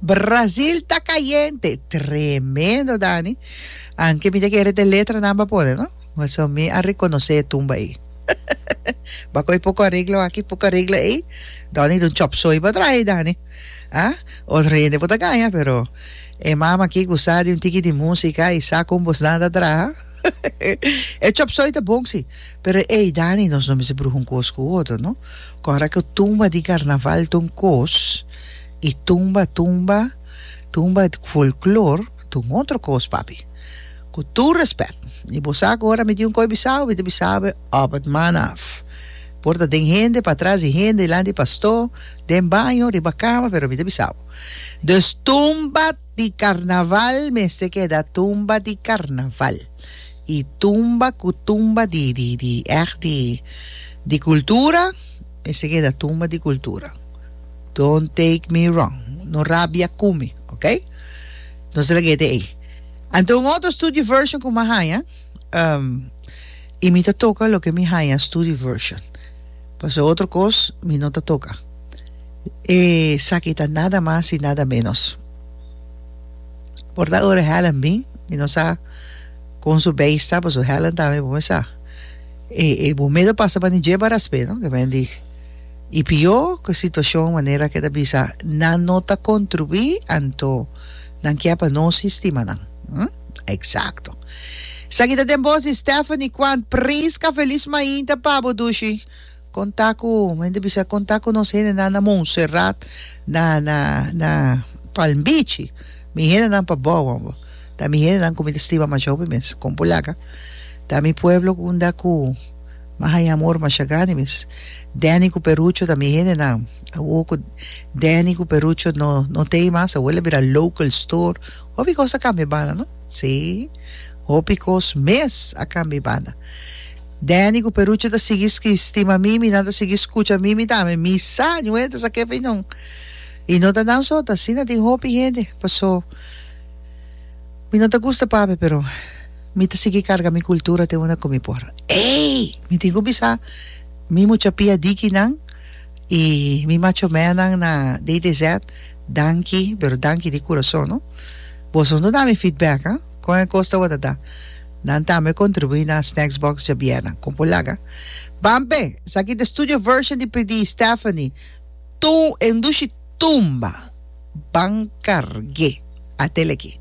Brasil ta cayente. Tremendo Dani. Anke mi ta kere te letranan pa pone, no? Paso mi a reconoce e tumba ei. Ba coi poco arreglo aki, poco arreglo ei. Dan ni dun chop soy pa trae, Dani. Ah, otro hende por ta gana, pero e mama aquí cu sa di un tiki di música y sa con bos nan ta traha, E chop soy ta bon si, pero ey Dani nos no mester bruha un cos cu otro no. Cu ora cu tumba di carnaval ta un cos y tumba tumba tumba folklor ta un otro cos papi. Cu tur respect. Y bo sa cu ora mi tin un coy bisabo mi ta bisabe op et man af. Por ta den hende, patras di hende, dilanti di pastor, den baño, riba cama pero mi ta bisabo. Dus tumba di carnaval mester keda tumba di carnaval y tumba cu tumba di di di echt di di cultura mester keda tumba di cultura don't take me wrong no rabia cu mi ok nos ta lag'e te ey anto un otro studio version cu mi a haya y mi ta toca loke mi haya studio version. Pasobra otro kos mi no ta toka. Esaki ta nada mas i nada ménos. Por ta ora Helen bin, mi no sa kon su beis ta, pasobra Helen tambe bo mi sa e bomedo pasa pa ni djeba raspe, no? Ke men di i pió ku e situashon manera ke ta bisa nan no ta kontribuí, anto nan kia pa nos i stima nan. Exacto. Esaki ta den bos di Stephanie Quan pris ka felis mainta pa bo dushi conta cu hende bisa conta cu nos hendenan na Montserrat na na na Palm Beach mi hendenan pa Bowan bo ta mi hendenan cu mi ta stima masha hopi mes con bo laga ta mi pueblo cu unda cu mi haya amor masha grandi mes Danny cu Perucho ta mi hendenan awo cu Danny cu Perucho no no tey mas awo el a bira local store Hopi cos a cambia banda, no? Sí, hopi cos mes a cambia banda. Danny cu Perucho ta sigui stima Mimi, nan ta sigui scucha Mimi tambe. Mi sa, ñu hende ta sa ke bay non. Y no ta nan so, ta asina tin hopi hende. Paso, mi no ta gusta papi, pero mi ta sigui carga mi cultura te unda cu mi por. Ey! Mi tin cu bisa mi mucha pia dikinan y mi macho mannan na DDZ. Danki, pero danki di kurason no. Boso no dami feedback ha. Kon e kos tabata ta nan tambe kontribuí na Snacks Box djabierna? Kon por laga? Bampe! Esaki ta e studio version di PD Stephanie Tu e ndushi tumba ban karg'é. Atele aki.